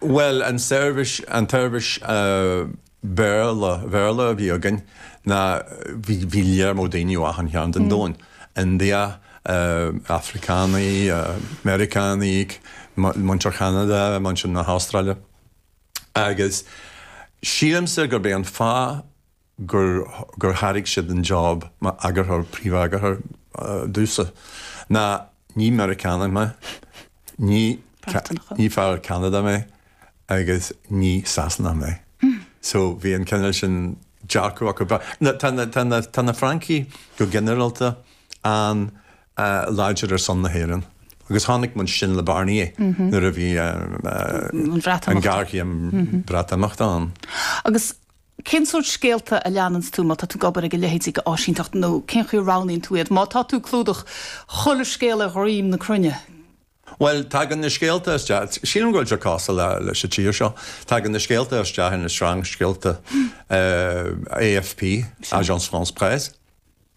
Bhuel, an tseirbhís, an tseirbhís Béarla, Bhéarla a bhí againn, ná bhí, bhí léar mór daoine as achan cheann den domhan, India, Afracánaigh, Meiriceánaigh, muintir Cheanada, muintir na hAstráile, agus sílimse gurb é an fáth gur gur thairg siad an job mar eagarthóir, príomheagarthóir ar dtús, ná ní Meiriceánach mé, ní ní fear as Ceanada mé agus ní Sasanach mé. So bhí an cineál sin dearcadh acu. Tá na tá na tá na Francaigh go ginearálta an-láidir ar son na hÉireann agus chonaic muid sin le Barnier nuair a bhí an Bhreatimeacht an ghearchéim Breatimeachta ann. Agus Cén sórt scéalta a leananns tú má tá tú ag obair ag a leithéid ag áisíneacht nó cén chaoi a roghnaíonn tú iad? Má tá tú ag clúdach chuile scéal ar dhroim na cruinne. Bhuel, tagann na scéalta isteach, sílim go bhfuil sé cosúil leis an tír seo, tagann na scéalta isteach ón sreang scéalta AFP, Agence France Presse.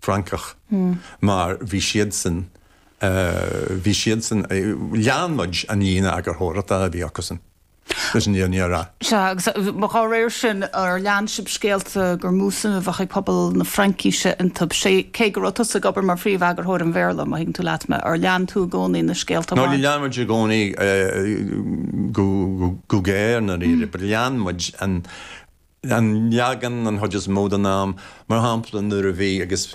Francach mar bhí siadsan, bhí siadsan, lean muid an líne eagarthóireachta a bhí acusan leis an fhírinne a rá. Sea, agus dá réir sin, ar lean sibh scéalta gur mó suim a bheadh ag pobal na Fraincise iontu, cé go raibh tusa ag obair mar phríomheagarthóir an Bhéarla, má thuigeann tú leat mé, ar lean tú i gcónaí na scéalta a bhain. Níor lean muid i gcónaí go géar ná go réidh, but lean muid an, an leagan, an chuid is mó den am. Mar shampla, nuair a bhí, agus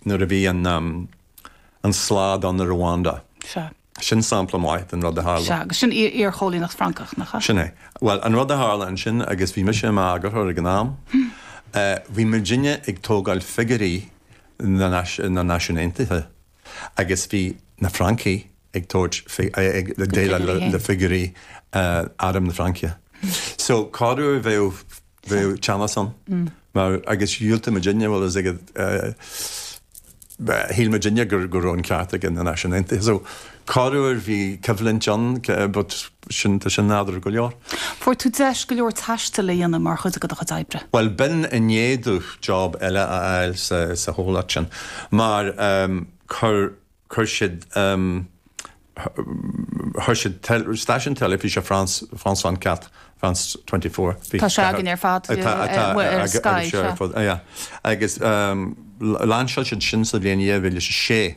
nuair a bhí an, an slad ann i Rwanda. Sea. Sin sampla maith den rud a tharla. Sea, agus sin iar-chóilíneacht Francach, nach ea? Sin é. Bhuel, an rud a tharla ansin, agus bhí mise i m'eagarthóir ag an am, bhí muidinne ag tógáil figiúirí na Náisiún Aontaithe. Agus bhí na Francaigh ag tabhairt figúirí le figúirí airm na Fraince. So corruair bheadh teannas ann mar agus dhiúltaigh muidinne bhfuil a fhios agat shíl muidinne gur go raibh an ceart ag na Náisiúin Aontaithe. So corruair bhí coimhlint ann but Sin tá sin nádúrtha go leor. Fuair tú deis go leor taistil a dhéanamh mar chuid de do chuid oibre. Bhuel, b'in i ndiaidh domh job eile a fháil sa, sa chomhlacht sin. Mar ehm, chuir, chuir siad ehm, chuir siad teil, stáisiún teilifíse France, France 24, France twenty four, vingt-quatre, Tá sé againn ar fad, eh, atá, eh, atá mu- ar Sky, agus seo ar sea. fud, yeah. Agus ehm, l- lainseáil siad sin sa bhliain dhá mhíle is a sé.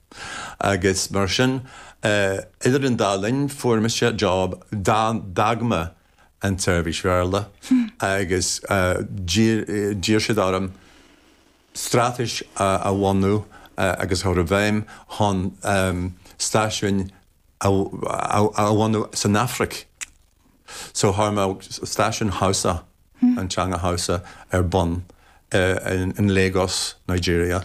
Agus mar sin, idir an dá linn, fuair mise job d'fhág mé an tseirbhís Bhéarla agus d'iarr siad orm straitéis a bhunú agus a chur i bhfeidhm chun stáisiúin a bhunú san Afraic. So chuir mé staisiún Hausa, an teanga Hausa, ar bun in Lagos, Nigeria.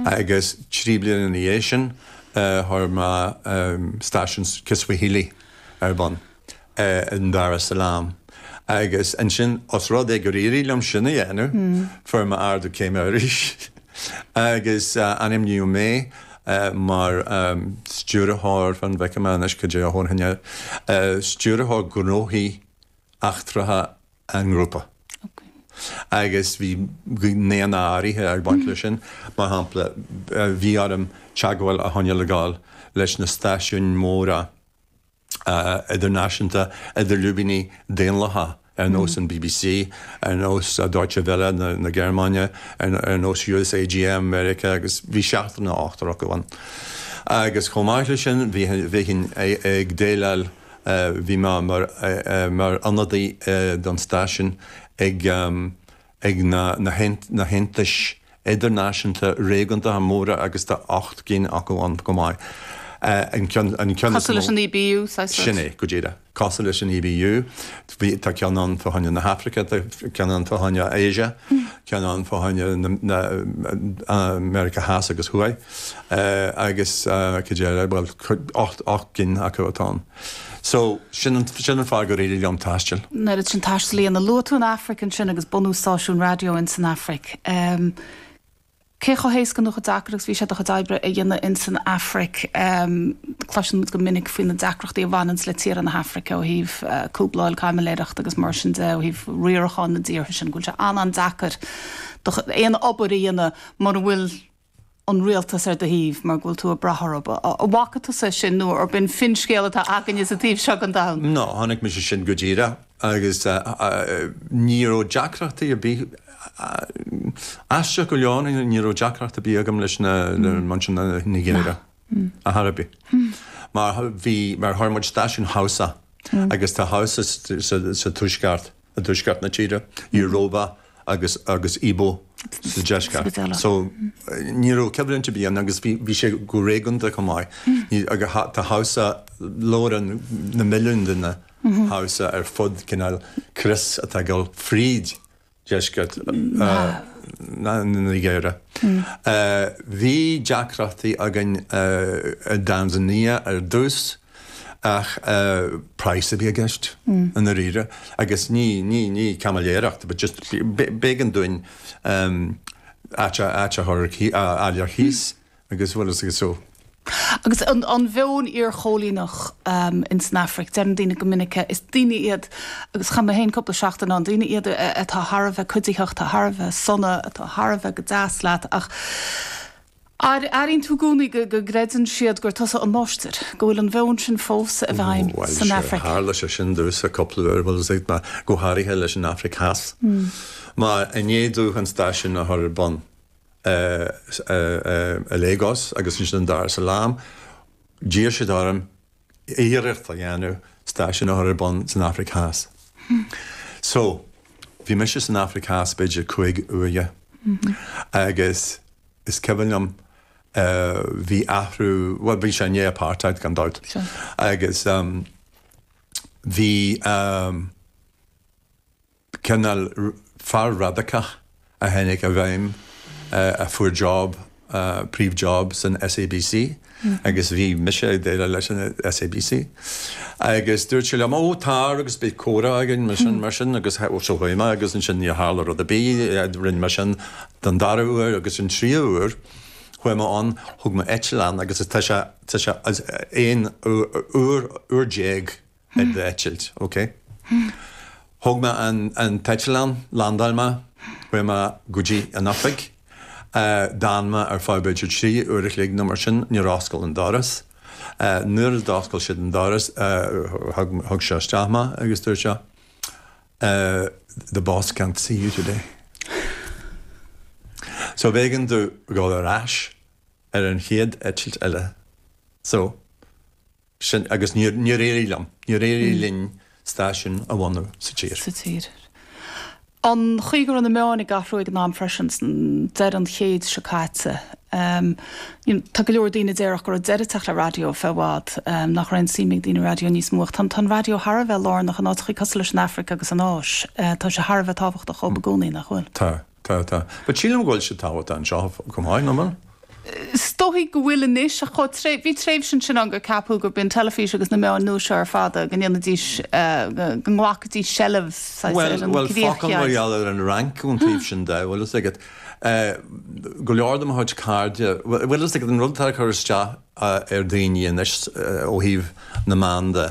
Agus trí bliana ina dhiaidh sin, chuir mé staisiún Kiswahili ar bun in Dar es Salaam. Agus ansin, os rud é gur éirigh liom sin a dhéanamh, fuair mé ardú céime arís agus ainmníodh mé mar Stiúrthóir fan go bhfeicfidh mé anois, cad é a thabharfainn air, Stiúrthóir Gnóthaí Eachtracha an nGrúpa. Agus bhí gnéanna áirithe ag baint leis sin, mar shampla, bhí orm teagmháil a choinneáil leis na stáisiúin mhóra, idirnáisiúnta idir lúibíní daonlathach ar nós an bbc, ar nós Deutsche Welle na Gearmáine, ar nós USAGM Mheiriceá agus bhí seachtar nó ochtar acu ann. Agus chomh maith leis sin bhínn ag déileáil, bhí mé mar ionadaí don stáisiún ag, ag na haontais idirnáisiúnta réigiúndacha móra agus tá ocht gcinn acu ann chomh maith. An ceann is mó. Cosúil leis an EBU, saghas rud? Sin é, go díreach. Cosúil leis an EBU. Tá ceann ann fá choinne na hAfraice, tá ceann ann fá choinne Asia, ceann ann fá choinne na Meiriceá Theas agus Thuaidh agus, go díreach, bhuel, ocht gcinn acu atá ann. So, sin an, sin an fáth gur éirigh liom taisteal, an oiread sin taistil a dhéanamh. Luaigh tú an Afraic ansin agus bunú stáisiún raidió in san Afraic. Um, cé chomh héasca nó chomh deacair agus bhí sé do chuid oibre a dhéanamh in san Afraic? Um, cloiseann muid go minic faoi na deacrachtaí a bhaineanns le tíre na hAfraice ó thaobh uh, cúbláil caimiléireacht agus mar sin de ó thaobh riarachán na dtíortha sin, go bhfuil sé an-an deacair do chu- aon obair a dhéanamh mura bhfuil an rialtas ar do thaobh mar go bhfuil tú ag brath orthub. An bhfaca tusa sin nó an b'in finscéal atá againne sa taobh seo den domhan? Nó chonaic mise sin go díreach agus ní raibh deacrachtaí ar bith, aisteach go leor, ní raibh deacracht ar bith agam leis na Nigéaraigh. Ar chor ar bith. Mar bhí, mar chuir muid stáisiún Hausa, agus tá Hausa sa tuaisceart, i dtuaisceart na tíre, Yoruba agus, agus Igbo sa deisceart. So, ní raibh coimhlint ar bith ann agus bhí, bhí sé go réigiúnda chomh maith. Ní, agus tá Hausa, labhrann na milliúin duine Hausa ar fud cineál crios atá ag dul fríd. deisceart na Nigéire. Bhí deacrachtaí againn i dTanzania ar dtús ach praghas a bhí i gceist i ndáiríre agus ní caimiléireacht but just b'éigean dúinn áit a chur ar cíos. agus bhfuil fhios agat so. Agus an meon iarchoilíneach in san Afraic, deireann daoine go minic, is daoine iad, agus chaith mé féin cúpla seachtain ann, daoine iad atá thar a bheith cuiditheach, atá thar a bheith sona, atá thar a bheith go deas leat, ach airínn tú gcónaí go gcreideann siad gur tusa an máistir, go bhfuil an meon sin fós i bhfeidhm san Afraic. Bhuel, sure, tharla sé sin domhsa cúpla uair, bhuel, is ait mar, go háirithe leis an Afraic Theas, mar i ndiaidh dúinn an stáisiún a chur ar bun, i Lagos agus ansin i Dar es Salaam, d'iarr siad orm iarracht a dhéanamh stáisiún a chur ar bun san Afraic Theas. So, bhí mise san Afraic Theas b'fhéidir cúig uaire agus is cuimhin liom bhí athrú, bhuel bhí sé i ndiaidh apartheid gan dabht, agus bhí, cineál fear radacach a tháinig i bhfeidhm a fuair job, príomh job san SABC agus bhí mise ag déileáil leis an SABC agus dúirt sé liom ó tar agus beidh comhrá againn agus sin mar sin agus so chuaigh mé agus ansin níor tharla rud ar bith, rinne mé sin don dara uair agus an tríú uair chuaigh mé ann, thug mé eitleán agus tá sé, tá sé aon uair, uair déag. d'eitilt, ok? Thóg mé an t-eitleán, landáil mé, chuaigh mé go dtí an oifig, d'fhan mé ar feadh b'fhéidir trí uair a chloig nó mar sin, níor oscail an doras. Nuair a d'oscail siad an doras, thug sé isteach mé agus dúirt sé, the boss can't see you today. So b'éigean domh dhul ar ais ar an chéad eitilt eile. So. sin agus níor éirigh liom, níor éirigh linn stáisiún a bhunú sa tír. sa tír. An chaoi go raibh na meáin ag athrú ag an am freisin, ag deireadh an chéid seo caite, em, tá go leor daoine a déarfadh go raibh deireadh ag teacht le raidió faoi i bhfad, em, nach raibh an suim ag daoine i raidió níos mó ach tá an, tá an raidió thar a bheith lárnach in áiteachaí cosúil leis an Afraic agus an Áis, eh, tá sé thar a bheith tábhachtach dhóibh i gcónaí, nach bhfuil? Tá. Tá, tá. But sílim go bhfuil siad tábhachtach anseo chomh maith, nach bhfuil? Is dóigh go bhfuil anois, ach chomh tréith, bhí tréimhse ansin ann gur ceapadh gurb í an teilifís agus na meáin nua seo ar fad é, go ndéanfaidís, go nglacfaidís seilbh, saghas, ar an gcríoch cheart. Bhuel, bhuel, focal mar gheall ar an Fhrainc ón taobh sin de, bhfuil fhios agat. Go leor de mo chuid cairde, bhfuil fhios agat, an rud atá ag cur isteach ar daoine anois ó thaobh na meán de,